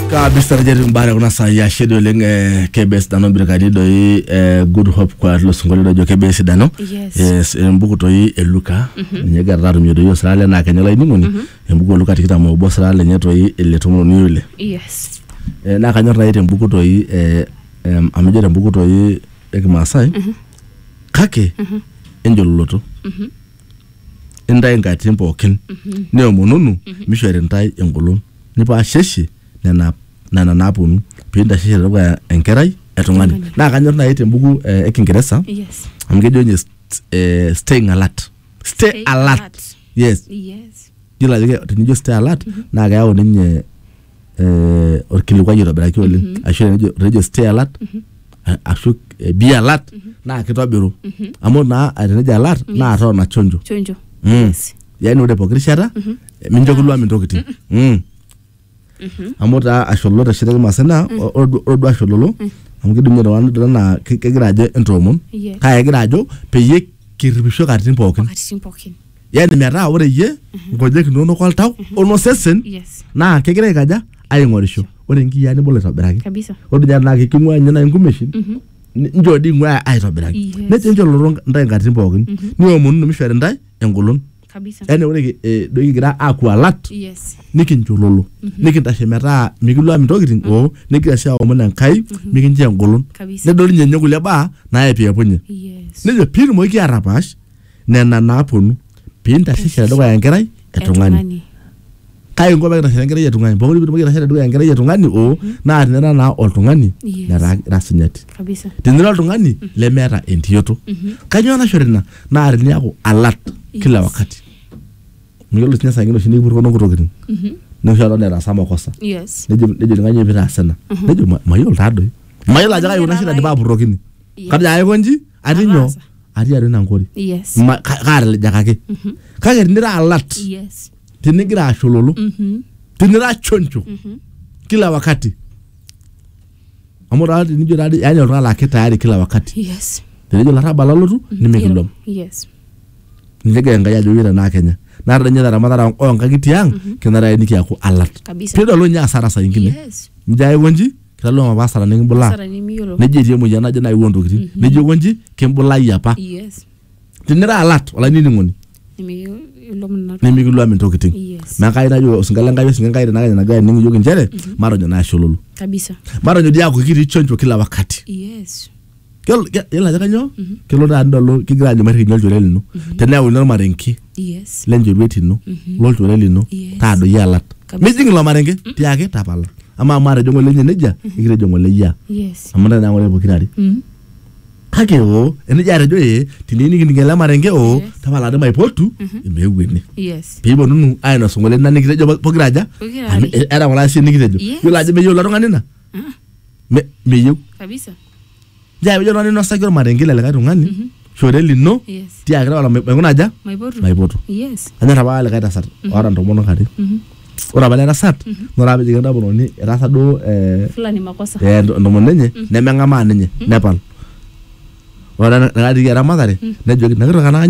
kabisa rejeri mbare kuna saa ya shida oleng eh, kebes dano birkani doi eh, good hope kwa lo singolio dojo kebes dano Yes. yes embuku toi eluka ninye gara atumie doi osira le naa kenya laining'oni embuku eluka tikitam obo osira lenye toi ele tomoni ole yes Eh, naa kanyor nai tembuku toi eh, em, amu ijo tembuku toi ekimaasai kake enjololoto intae inkatitin pookin niomonunu mishori intae engolon nipaasheshe nena nena naaponu pintasheshe tedukuya enkerai e tung'ani naa kanyor naaji tembuku eh, e kingeresa Yes. amu kejo ninye st- eh, staying alert stay Stay alert alert. yes Yes. yiolo ajo ke- tenijo stay alert naa keyau ninye eh, orkilikuai oitobiraki oleng mm -hmm. ashu tenejo tenejo stay alert mm -hmm. ashu eh, be alert mm -hmm. naa kitobiru mm -hmm. amu naa eh, tenejo alert mm -hmm. naa tona chonjo chonjo mm. yes. yani ore pooki rishata mm -hmm. mincho kiluam intokitin mm -hmm. mm -hmm. amu taa ashololo teshitaki maasai naa mm -hmm. ore duo ashololo mm -hmm. amu kidim iltung'anak dol anaa ke- kegira ajo entoomon Yes. kake egira ajo peyie kirripisho katitin pookin Wakatitin pookin yani metaa ore iyie nkonyek inonok oltau onosesen Yes. naa kegira aikaja aing'orisho ore nkiyaa nibol aitobiraki Kabisa. ore dii naa kiking'ua ninye nai nkumeshin ni- njoo dii ing'ua aitobiraki Yes. nejo enchoo lolo ntae nkatitin pookin niomonunu mishori ntae engolon Kabisa. yani ore ki- eh, doi kigira aaku alat Yes. nikinchololo nikintashe metaa mikiluam intokitin oo nikigira sii aomon enkai mikincho engolon Kabisa. nedol ninye ninye kulie baa naepiapunye Yes. nejo piitumoki atapaash nena naaponu piintashe tedukuya enkerai e tung'ani kake inko pekintashe enkerai e tung'ani pokoli pitumoki aitashe tedukuya enkerai e tung'ani oo naa tinira naa oltung'ani Yes. letaa ira sinyati kabisa tinira oltung'ani lemeeta entiyoto kanyoo naishori ina naa tiniaku alert kila Yes. wakati miyiolo sinye saa ingine oshi nikipurrokinono nkutokitin noshi kata netaasa makosa yes nejo nejo kanyoo pitaasa ina nejo "Ma- mayiolo taadoi mayiolo ajo kai kuna shida dipa apurrokini Yes. kajo aiko nji atii nyoo Ataasa. atii atua ina nkori yes Ma- ka- kaatilijakaki kake tinira alat yes tinigira ashololo Mhm. tinira choncho kila wakati amu taa tinijo taa yani oltung'ani laa kitayari kila wakati yes tenejo larrabal alotu nimikilom yes nilege enkai ajo yira naa kenya naa tadanye taramatara oo nkang'itie ang kenare nikiaku alat Kabisa. pidolu ninye asara saa ingine yes mjae wonji kitadolu apa asara nikibulaa Asara nimiyiolo. nejo etii emoyian naje nayewuo ntokitin nejo konji kimbulayie apa Yes. tinira alat olainining'oni Nimiyiolo mna- nimikiluam intokitin Yes. naa kai najo osinka le Enkai osinka Enkai tenakata enagira ainining iyiok inchere matonyok naa ashololo Kabisa. matonyok dii aaku kitii chonjo kila wakati Yes. Yiolo ke- yiolo ajo kanyoo kelo taa nidolu kigira aanyu mairrikinye olchore lino teneyauni ormarenke yes lenchoruet ino lolchore lino Yes. taadoi alat Kabisa. mijing ilo marenke tiaki tapala amaa amu atejo ng'ole inye nejia nikitejo ng'ole iyia yes amu ntae naa ng'ole pokirare Mm. kake oo enijia atejo ee teniyieu nikining ele marenke oo Yes. tapala maipotu emeeu ene yes piiponunu ainosu ng'ole ina nikitejo po- pokira aja Pokira Amu are. e- era ng'ole asie nikitejo Yes. yiolo ajo meyieu ilo tung'ani ina Ah, Me- meyieu kabisa Njaa pijo oltung'ani inosaki ormarenke le likae tung'ani shore lino Yes. tiakaki ore maikuna aja Maipotu. maipotu Yes. anyor apa likae tasat oota ntomonok are ore apa ele tasat naa ore apa pejoki entomononi etaasa duo eh, Fulani makosa. eh, ento- entomononi enye nemeng'amaa ninye nepal ore ena- enakatiki eramatare nejoki nakitoki anakanyu